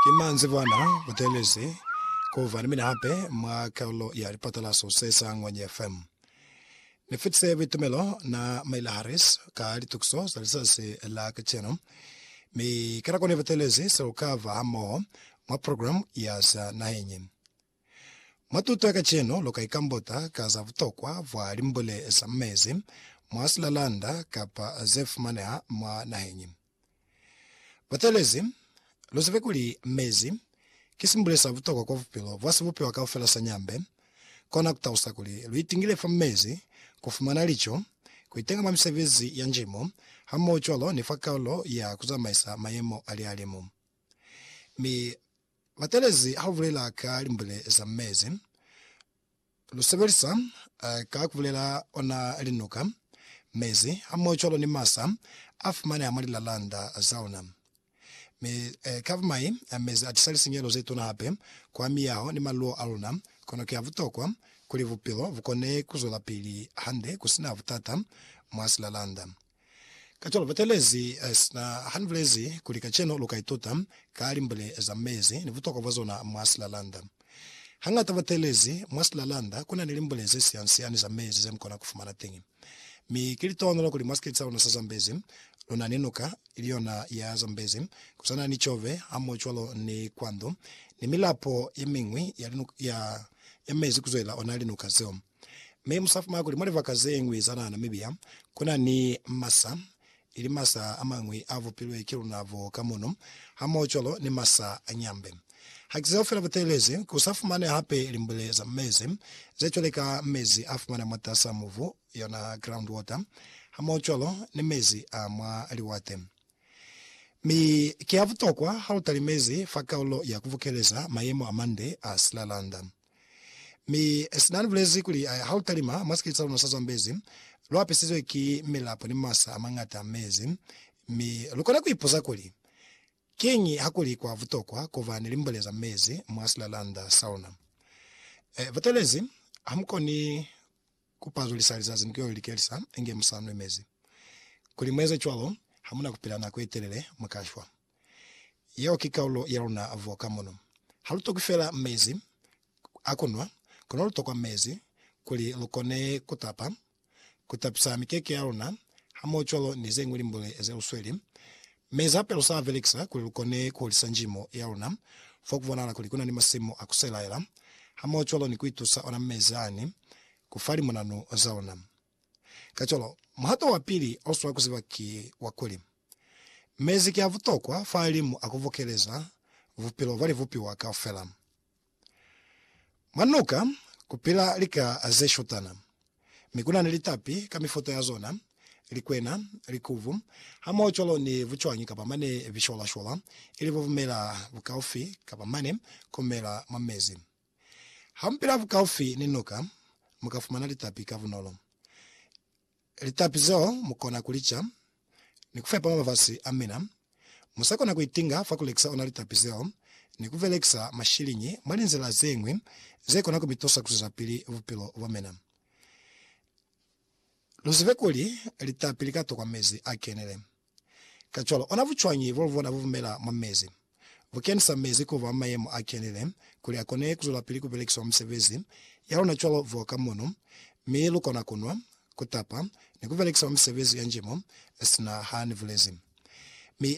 Ki manzibwana butelezi ku fa ni mina hape mwa kalulo ya lipatalaso se sa Ngwenye FM. Ni fitise buitumelo na Maila Harris ka litukiso za lizazi la kacenu, mi ka nako ni butelezi seo ka fa hamoho mwa programu ya za naheng. Mwa tuto ya kacenu, lu ka ikambota ka za butokwa bwa limbule za mezi mwa silalanda kapa ze fumaneha mwa naheñi. Bateelezi, lu zibe kuli mezi ki simbule sa butokwa kwa bupilo bwa sibupiwa kaufela sa nyambe. Kona ku talusa kuli lu itingile fa mezi, ku fumana lico, ku itenga mwa misebezi ya njimo, hamoho cwalo ni fa kaulo ya ku zamaisa mayemo a lihalimu. Mi, Matelezi ha u bulela ka limbule za mezi, lu sebelisa ka ku bulela ona linuka, mezi, hamohocwalo ni masa a fumaneha mwa lilalanda za ona. Mi ka bumai, mezi a tisa lisinyehelo ze tuna hape kwa miyaho ni maluwo a luna. Kono ki a butokwa kuli bupilo bu kone ku zwelapili hande ku si na butata mwa silalanda. Kacwalo batelezi sina hanibulezi kuli kacenu luka ituta ka limbule za mezi ni butokwa bwa zona mwa silalanda. Hangata batelezi mwa silalanda kuna ni limbule ze siansiani za mezi zemukona kufumana teñi. Mi ki litohonolo kuli mwa sikiti sa luna sa Zambezi luna ni nuka iliyona ya Zambezi, kusana ni Chobe hamohocwalo ni Kwandu ni milapo yemiñwi ya mezi kuzwelela ona linuka zeo. Mi mu sa fumana kuli mwa libaka ze ñwi za naha Namibia ku na ni masa, ili masa a mañwi a vupilwe ki luna bo ka mono, hamohocwalo ni masa a nyambe. Ha ki zeo fela bu teelezi ku sa fumane hape limbule za mezi, ze cwale ka mezi a fumana mwatas'a mubu, yona groundwater, hamohocwalo ni mezi a mwa liwate. Mi ki a butokwa ha lu talimezi fa kaulo ya ku bukeleza mayemo a mande a silalanda. Mi sina ni bulezi kuli, Ha u talima mwa sikete sa luna sa Zambezi, lu apisizwe ki milapo ni masa a mañata a mezi. Mi lu kona ku ipuza kuli, Kiñi ha kuli kwa butokwa ku ba ni limbole za mezi mwa silalanda sa luna? E, butelezi, ha mu koni ku pazulisa lizazi ni ku yo likelisa inge mu sa nwi mezi. Kuli mu eze cwalo, ha mu na ku pila nako ye telele, mu ka shwa. Yeo ki kaulo ya luna vo ka mono. Ha lu tokwi fela mezi a ku nwa, kono lu tokwa mezi kuli lu kone ku tapa, ku tapisa mikeke ya luna, hamohocwalo ni ze ñwi limbule ze lu sweli. Mezi hape lu sa a belekisa kuli lu kone ku hulisa njimo ya luna fo ku bonahala kuli ku na ni masimu a ku selaela, hamohocwalo ni ku itusa ona mezi ani ku fa limunanu za luna. Kacwalo, muhato wa pili o swa ku ziba ki wa kuli, Mezi ki a butokwa fahalimu a ku bukeleza bupilo bwa libupiwa kaufela. Mwa nuka ku pila lika ze shutana, mi ku na ni litapi ka mifuta ya zona, likwena, likubu, hamohocwalo ni bucwañi kapa mane bishwalashwala, ili bubumela bukaufi kapa mane ku mela mwa mezi. Hampela bukaufi ni nuka, mu ka fumana litapi ka bunolo. Litapi zeo mu kona ku li ca ni ku fepa mabafasi a mina. Mu sa kona ku itinga fa ku lekisa ona litapi zeo ni ku belekisa mashiliñi mwa linzila ze ñwi ze kona ku mi tusa ku zwezapili bupilo bwa mina. Lu zibe kuli litapi li ka tokwa mezi a kenile. Kacwalo, ona bucwañi bwa lubona bubumela mwa mezi bukenisa mezi kuba mayemo a kenile kuli akone kuzwelapili kubelekiswa misebezi yalona cwalo fo ka muno, mi lukona kunwa, kutapa, ni kubelekisa mwa misebezi ya njimo, sina ha nibulezi. Mi,